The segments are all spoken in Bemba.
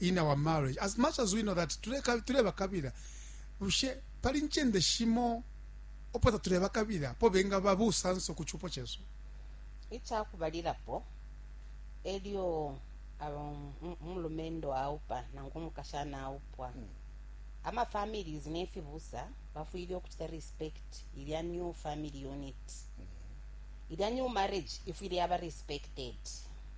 in our marriage as much as we know that tuleba kabila bushe pali nchende shimo opo tatuleba kabila po benga babusanso ku chupo chesu ichakubalilapo elyo um, umulumendo aupa nangu umukashana aupwa hmm. ama families nefibusa bafwile okuchita respect ilya new family unit hmm. ilya new marriage ifwile yaba respected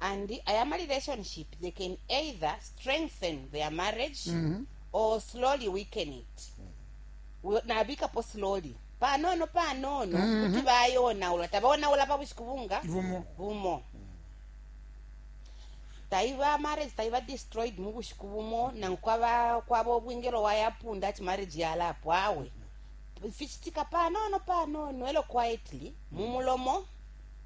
and aya ma relationship they can either strengthen their marriage mm -hmm. or slowly weaken it nabikapo slowly panono panono mm-hmm. kuti bayonaula tabaonaula pa bushiku bunga bumo taiva marriage taiva destroyed mu bushiku bumo nangu kwaba kwaba obwingelo wayapunda ati marriage yalapo awe fichitika panono panono elo quietly mumulomo mm -hmm.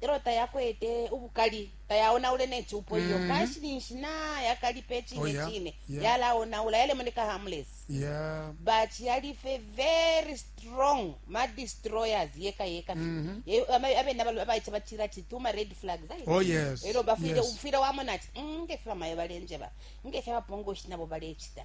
e lyo tayakwete ubukali, tayaonaule ne cupo iyo. Mhm. Kanshi ninshi nayakalipa Oh, icine yeah. cine, Yeah. yalaonaula, yalemoneka harmless. Yeah. but yalife very strong ma destroyers yeka yeka Mhm. Ye- ama- abena balo- abaica batila ati tuma red flags ayi. Oh, yes. elo bafwile Yes. ufwile wamona ati "Mm, ngefyo bamayo balenjeba ngefyo abapongoshi nabo balecita